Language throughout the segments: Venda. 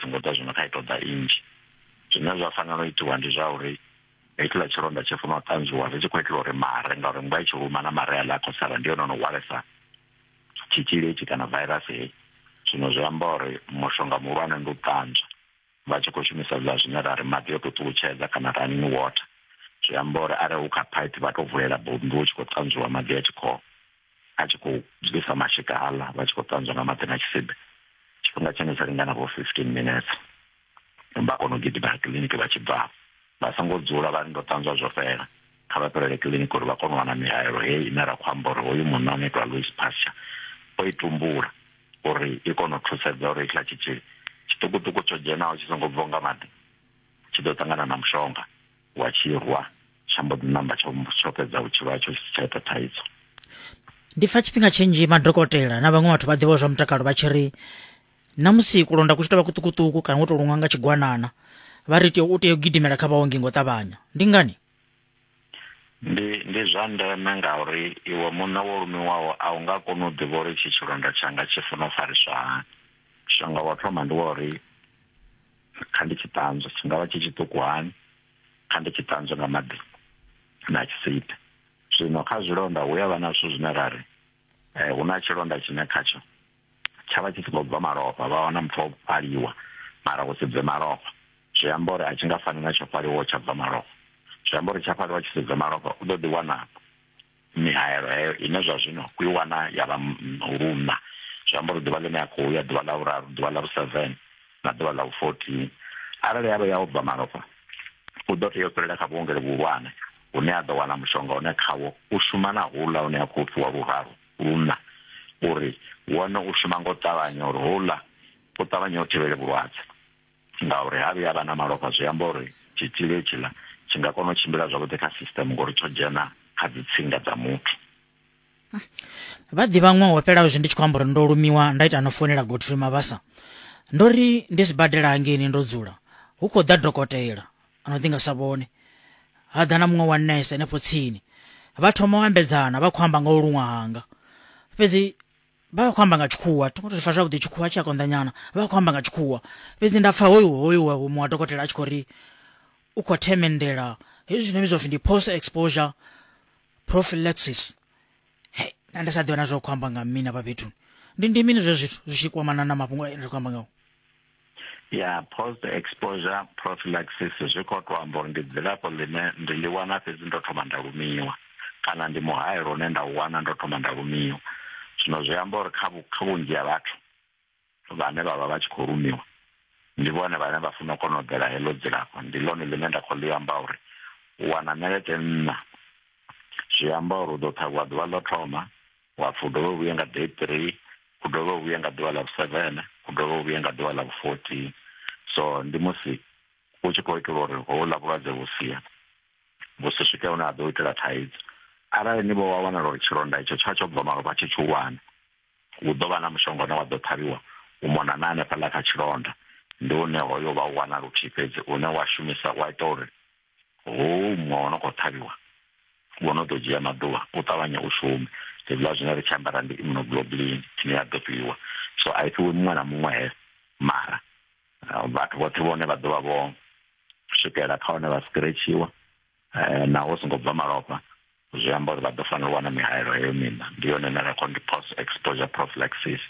Songo ita zwino kha i ṱoḓa i nnzhi. Zwine zwa fanela u itiwa ndi zwa uri hetshiḽa tshilonda tshi funa u ṱanzwiwa zwi tshi khou itela uri mare ngauri mmbwa i tshi luma na mare aḽa a khou sala ndi hone ono hwalesa tshitzhili hetshi kana vairasi heyi. Zwino zwi amba uri mushonga muhulwane ndi u ṱanzwa vha tshi khou shumisa hezwiḽa zwine ra ri maḓi o to ṱutshedza kana running water zwi amba uri arali hu kha phaiphi vha to vulela bommbi hu tshi khou ṱanzwiwa maḓi a tshi khou. a tshi khou bvisa mashika aḽa vha tshi khou ṱanzwa nga maḓi na tshisibe tshifhinga tshine tsha lingana vho fifteen minutes vha kona u gidima kiḽiniki vha tshi bva vha songo dzula vha ndo ṱanzwa zwo fhela kha vha fhelele kiḽiniki uri vha kone u wana mihaelo heyi ine ra khou amba uri hoyu munna no itwa louis pasture o i tumbula uri i kone u thusedza uri hetshiḽa tshitzhili tshiṱukuṱuku tsho dzhenaho tshi songo bviwa nga maḓi tshi ḓo ṱangana na mushonga wa tshirwa tsha mbo ḓi namba tsho tsho fhedza vhutshilo hatsho tshi si tsha ita thaidzo ndi pfa tshifhinga tshinzhi madokotela na vhaṅwe vhathu vha ḓivha zwa mutakalo vha tshi ri na musi kulonda ku tshi tovha kuṱukuṱuku kana wo to luṅwa nga tshigwanana vha ri tea u tea u gidimela kha vhaongi ngo ṱavhanya ndi ngani ndi ndi zwa ndeme ngauri iwe muṋe wo lumiwaho a u nga koni u ḓivha uri tshi tshilonda tshanga tshi funa u fariswa hani mushonga wa thoma ndi wa uri kha ndi tshi ṱanzwa tshi ngavha tshi tshiṱuku hani kha ndi tshi ṱanzwe nga maḓi na tshisibe zwino kha zwilonda hu ya vha na zwithu zwine ra ri eh, hu na tshilonda tshine khatsho tsha vha tshi si khou bva malofha vha wana muthu o fhaliwa mara hu si bve malofha zwi amba uri a tshi nga fani na tsho fhaliwa tsha bva malofha zwi amba uri tsha fhaliwa tshi si bve malofha u ḓo ḓi wana mihaelo heyo ine zwa zwino ku i wana ya vha luna zwi amba uri ḓuvha ḽine ya khou ya ḓuvha ḽa vhuraru ḓuvha ḽa vhu-seven na ḓuvha ḽa vhu-14 arali ya vha ya u bva malofha u ḓo tea u fhelela kha vhuongelo vhuhulwane hune a ḓo wana mushonga une khawo u shuma na houḽa une a khou fhiwa luraru luṋa uri wone u shuma nga u ṱavhanya uri houḽa u ṱavhanye u thivhele vhulwadze ngauri ha vhuya vha na malofha zwi amba uri tshitzhili hetshiḽa tshi nga kona u tshimbila zwavhuḓi kha system ngori tsho dzhena kha dzitsinga dza muthu vha ḓivha ṅwaha wo fhelaho zwi ndi tshi khou amba uri ndo lumiwa nda ita no founela godfrey mabasa ndo ri ndi sibadela hangeini ndo dzula hu khou ḓa dokotela ano ḓi nga sa vhone ha ḓa na muṅwe wa nese henefho tsini vha thoma u ambedzana vha khou amba nga u luṅwa hanga fhedzi vha khou amba nga tshikhuwa thi ngo to fa zwavhuḓi tshikhuwa tshi a konḓanyana vha khou amba nga tshikhuwa fhedzi nda pfa hoyu hoyu muṅwe wa dokotela a tshi khou ri u khou themendela hezwi zwine vhidzwa pfhi ndi post exposure prophylaxis hey na ndi sa ḓivha na zwa khou amba nga mini afha fhethu ndi ndi mini zwe zwithu zwi tshi kwamana na mafhungo a ri khou amba ngao ya post exposure prophylaxis zwi khou tou amba uri ndi dzilafho ḽine ndi ḽi wana fhedzi ndo thoma nda lumiwa kana ndi muhayelo une nda u wana ndo thoma nda lumiwa zwino zwi amba uri kha vhunzhi ha vhathu vhane vha vha vha tshi khou rumiwa ndi vhone vhane vha funa u kona u ḓela heḽo dzilafho ndi ḽone ḽine nda khou ḽi amba uri u wana ṋelete nṋa zwi amba uri u ḓo ṱhavhiwa ḓuvha ḽo thoma wa pfhi u dovhe u vhuye nga day three u dovhe u vhuye nga ḓuvha ḽa vhuseven u dovhe u vhuye nga ḓuvha ḽa vhufourteen so ndi musi u tshi khou itela uri houḽa vhulwadze vhu sia vhu si swike hune ha ḓo itela thaidzo arali ni vho wa wanala uri tshilonda itsho tsha tsho bva malofha tshi tshi wana hu ḓo vha na mushonga une wa ḓo ṱhavhiwa u mona na hanefhaḽa kha tshilonda ndi une hoyo vha u wana luthihi fhedzi une wa shumisa wa ita uri hou muṅwe wo no khou ṱhavhiwa wo no ḓo dzhia maḓuvha u ṱavhanye u shume hezwiḽa zwine ri tshi ambara ndi immunoglobulin ine ya ḓo fhiwa so a i fhiwi muṅwe na muṅwe he mara vhathu vhoṱhe vhone vha ḓo vha vho swikela kha hone vha sikiretshiwa eh, na hu songo bva malofha zwi amba uri vha ḓo fanela u wana mihaelo heyo mina ndi yone ine ra khou ndi post exposure prophylaxis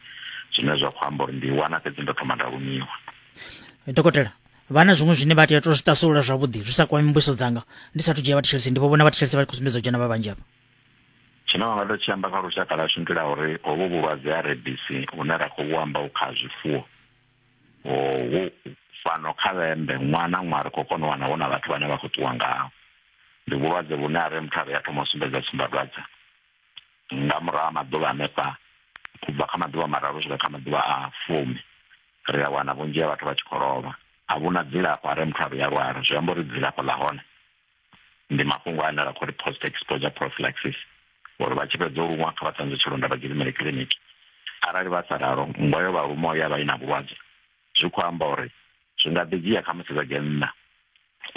zwine zwa khou amba uri ndi wana fhedzi ndo thoma nda lumiwa dokotela vha na zwiṅwe zwine vha tea to zwi tasulula zwavhuḓi zwi sa kwami mbuso dzanga ndi sathu dzhia vhathetshelesi ndi vho vhona vhathetshelesi vha khou sumbedza u dzhena vha vhanzhi afha tshine vha nga ḓo tshi amba kha lushaka ḽashu ndi la uri hovhu vhulwadze ha rebisi hune ra khou amba u kha zwifuwo wo fhano kha vhembe ṅwana na ṅwana ri khou kona u wana hu na vhathu vhane vha khou ṱuwa ngaho ndi vhulwadze vhune a re muthu a re a thoma u sumbedza tsumbadwadze nga murahu ha maḓuvha hanefha u bva kha maḓuvha mararu swika kha maḓuvha a fumi ri a wana vhunzhi ha vhathu vha tshi khou lovha a vhuna dzilafho a re muthu a re a lwala zwi amba uri dzilafho ḽa hone ndi mafhungo ane ra khou ri post exposure prophylaxis uri vha tshi fhedza u lumwa kha vha ṱanzwe tshilonda vha gidimele kiḽiniki arali vha sa ralo nngwa yo vha lumo ya vha i na vhulwadze zwi khou amba uri zwi nga ḓi dzhia kha musi vha dzhia nṋa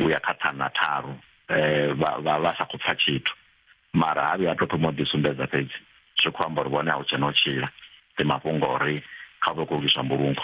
u ya kha ṱhana tharu um vha vha sa khou pfa tshithu mara ha vhuya a to thoma u ḓisumbedza fhedzi zwi khou amba uri vhone a hu tshena u tshila ndi mafhungo uri kha vhe khou lwiswa mbulungo